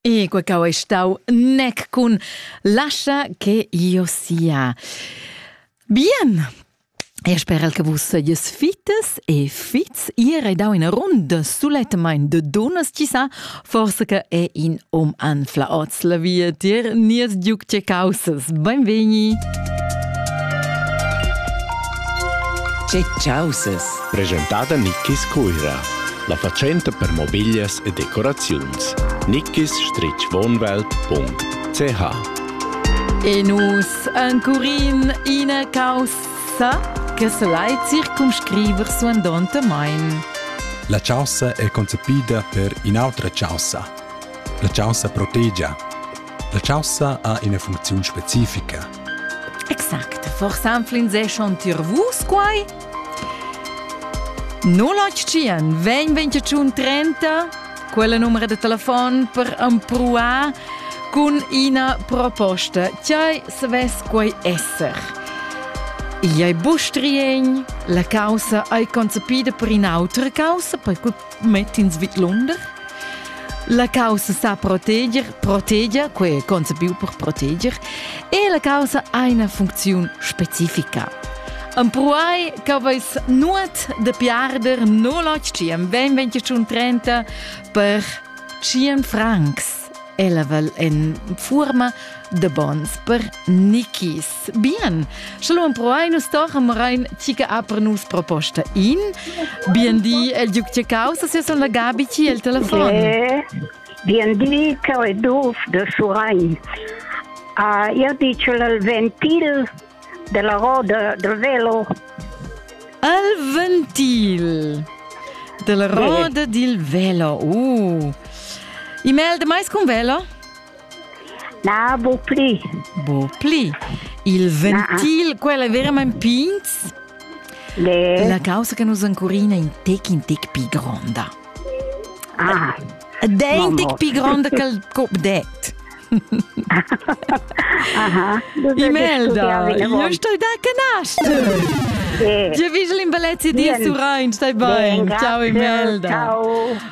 E quei cau ei stau nec cun lascha che io sia. Bien, E sperel che vus seies fites e fits ir e dau in rund sulettemain de dunas ci sa, forse che è in om anfla oz la via tier nies giuc ce causas. Benvegni! Ce causes! Presentada Nickis Cuira. La fatschenta per mobiglias e decoraziuns nickisstrichwohnwelt.ch E nus encurin ina caussa che selai circumscriver suandontamein. La chaussa è concepida per in'autra chaussa. La chaussa protegia. La chaussa ha ina funcziun specifica. Exakt, forse anflin se schon tir vus quai? No latschien 20 30 quella numera de telefon per empruar cun ina proposta. Tgei savess quei esser? Igl ei bustrien, la causa ei concepida per in autra causa, per mett'ins vidlunder? La caussa sa proteger, protegia, quei concepiu per proteger, e la caussa ha una funzione specifica. Empruai che vais nuot de piarder 085 2030 per 100 francs. Ella vel en forma de bons per nichis. Bien, sche lo emproai nus tochen morein ti che ha per nus proposta in. Bien di, el duc che causa se son la Gabi ti el telefon. Bien di, che è Duf de Surain. Ha io dice il ventil della roda del velo. Il ventil della roda del velo. Uh. I mel de mais con velo? Na, bu pli. Bu pli. Il ventil, ah, ah. quel è veramente pins. Le... La causa che nus ancora in tec in tec più gronda. Ah. De in tec più gronda che il cop det. Aha, Imelda, io sto da canastro. Ti hai visto l'imbalezza di Surain, stai bene. Ciao Imelda. Ciao.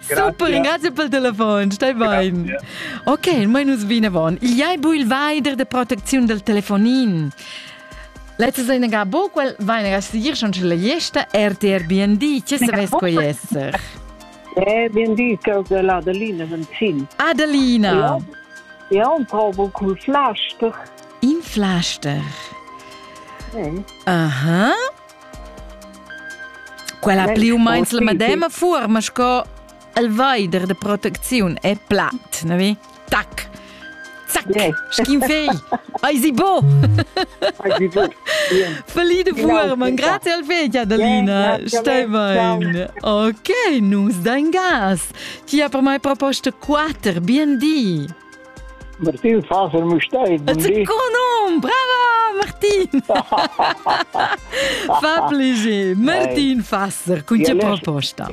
Super, ringrazio per il telefon, stai bene. Ok, noi nus vinavon. Il ai bu il vaider de protezione del telefonin. Letztes Einega bo, quel Einega sier schon la gesta RTR BND, che se ves coi esser? Eh, BND, che de la Adelina Venzin. Adelina. Ja, ja un probo col Flaster. In Flaster. Aha. Quella pli u meins la medema fuorma sco il veider de protecziun e plat, ne vi? Tac! Zac! Yeah. Sch'in fei! Ai si bo! Ai si bo! Feli de Fuhrmann, grazie al fei, Adelina. Stai bene. Ok, nus dein gas. Ti ha per mai proposto quater, bien di. Martin Faser Mustair. Con nom! Brava, Martin! Fa plaisir. Martin Fasser, con tge proposta?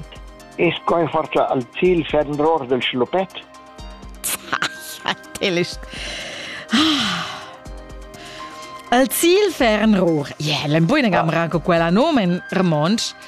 Es coi forza al Ziel ferm ror del schlupet? Al Ziel ferm ror. Yeah, l'em buin agam ranco quella nom en Ramonsch.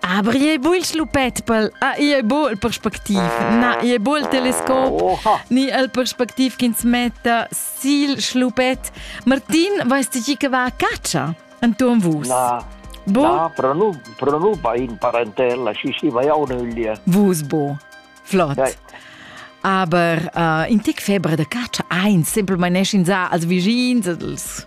Abri ei buc il schlupet pel ah, ei ei buc il perspectiv. Na, ei ei buc il telescop Oha. ni il perspectiv ch'ins metta sil schlupet. Martin, weißt du chi che va a caccia intorn vus? Na, Bo? na, però nu, però nu va in parentella, ci si va ja un'öglia. Vus bo. Flott. Dai. Aber uh, in tec febra da caccia ein semplamain ins als vischins, als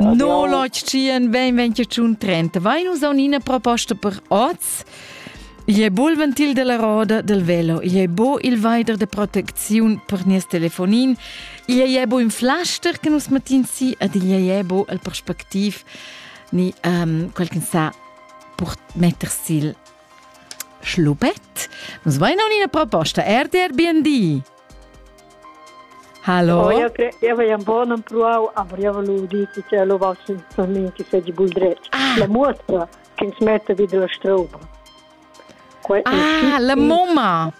No lotschien ben venche tschun trenta. Vai nus on ina proposta per oz? Gli è bo il ventil della roda del velo, gli è bo il vaider de proteziun per nies telefonin, gli è bo in flaster che nus matin si ed gli è bo il prospectiv ni um, quel che sa per metter sil schlupet. Nus vain on ina proposta RDR BND. Hallo. Eu cre eu vai un bon empruau am rievolu di che ce lo va per min che feci bul dret. Ah. La muotra che ins mette vid la stroba. Que ah, la mumma.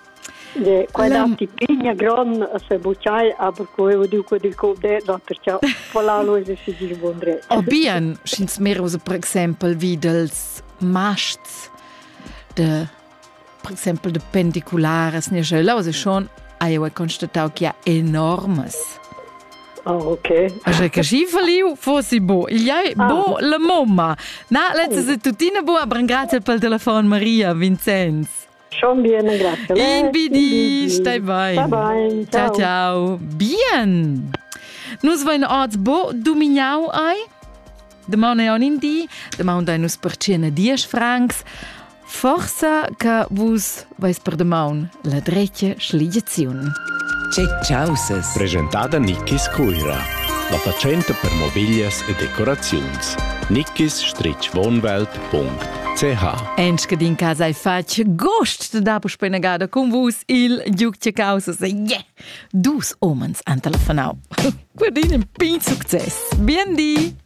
De quella la... tipigna gron se bucciai aber co eu dico del code no perché pola lo se si dir buon dret. O bien, schins meros per exempel wie dels masts de per exempel de pendiculares ne jeu schon ha eu constatau che ha enormes Ah, ok. Aja che schi valiu fossi bo. Il iai ah. bo la mamma. Na, letzte se tutina bo a brangrazel pel telefon Maria Vincenz. Schon bien, grazie. In bidi, stai bene. Bye bye. Ciao ciao. Bien. Nus vain orts bo dumignau ai? Damaun è on in di, damaun dai nus percena diesch francs. Forsa che vus vais per damaun la dretga schligiaziun. Causes. Presentada Nickis Cuira. La fatschenta per mobiglias e decoraziuns. nickis-wohnwelt.ch Enske din casa e fatg gost da dapo spenegada con vus il Giucce Causes. Yeah! Dus omens an telefonau. Guardin in pin succes. Bien di!